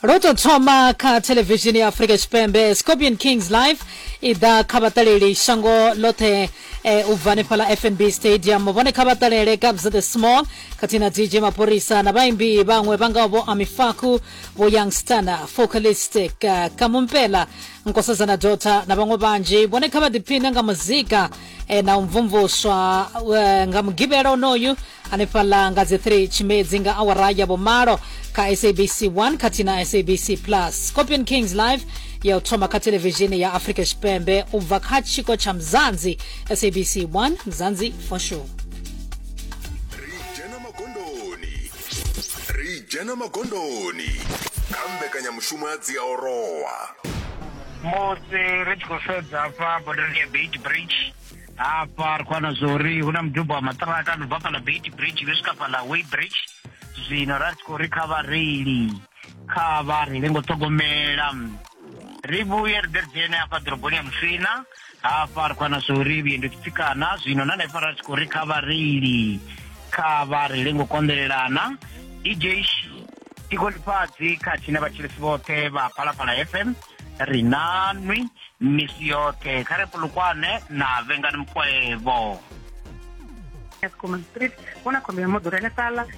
ro tou thoma kha thelevishini ya afrika tshipembe scorpion kings live i ḓa kha vhaṱaleli shango ḽoṱhe eh, u bva hanefhaḽa fnb stadium vhone kha vhaṱalele gabs the small khathihi na dj mapholisa na vhaimbi vhaṅwe vha ngaho vho amifaku vho young stana focalistic uh, kamumpela nkosazana dota na vhaṅwe vhanzhi vhone kha vha ḓiphine nga muzika e, na u mvumvuswa e, nga mugivhela onoyu hanefhaḽa nga dzi 3 tshimedzi nga awara ya vhumalo kha sabc 1 khathihi na sabc plus scorpion kings live ya u thoma kha televishini ya afrika tshipembe u bva kha tshiko tsha mzanzi sabc 1 mzanzi for sure ri dzhena magondoni kha mbekanyamushumo ya dziaorowa musi ri tshi khou sedza hafha bodoni ya beit bridge hafha ri khou wana zwa uri hu na mudubo wa maṱiraka no bva fhala beit bridge vhe swika fhala way bridge zwino ra tshi khou ri kha vhareili kha vha reile ngo ṱhogomela ri vhuye ri ḓe ri dzhene hafha ḓoroboni ya musina hafha ri khou ana zwo ri vhuendi tshi tsikana zwino na hanefha ra tshi khou ri kha vhareili kha vha ri lengo konḓelelana dj tiko ḽifhadzi khathihi na vhatshilisi vhoṱhe vha phalaphala fm ri na nwi misi yoṱhe kha ri pulukwane na vhengani mukwevho Eskom Street, vhona khombo ya moḓoro henefhaḽa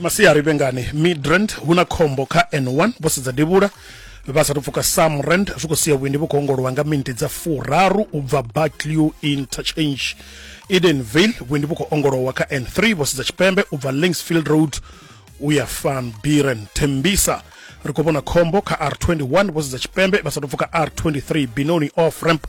masiari vhengani midrand hu na khombo kha n1 vho sedza devhula vha sathu pfuka samrand zwi khou sia vhuendi vhu khou ongolowa nga miniti dza furaru u bva barclew interchange edenvale vhuendi vhu khou ongolowa kha n3 vho sedza tshipembe u bva linksfield road u ya van biren tembisa ri khou vhona khombo kha r21 vho sedza tshipembe vha sathu pfuka r23 binoni off ramp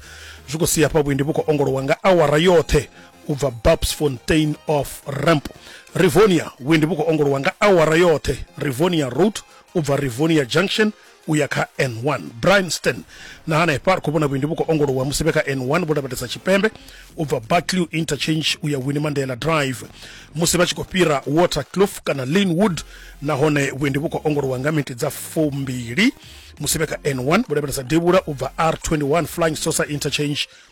zwi khou sia hafha vhuendi vhu khou ongolowa nga awara yoṱhe u bva bapsfontein of ramp rivonia vhuendi vhu khou ongolowa nga awara yoṱhe rivonia road u bva rivonia junction u ya kha n1 brinston na hanefha ri khou vhona vhuendi vhu khou ongolowa musi vhe kha n1 vho lavhelesa tshipembe u bva barclew interchange u ya winnie mandela drive musi vha tshi khou fhira watercloof kana linwood nahone vhuendi vhu khou ongolowa nga miniti dza fumbili musi vhe kha n1 vho lavhelesa devhula u bva r21 flying sosa interchange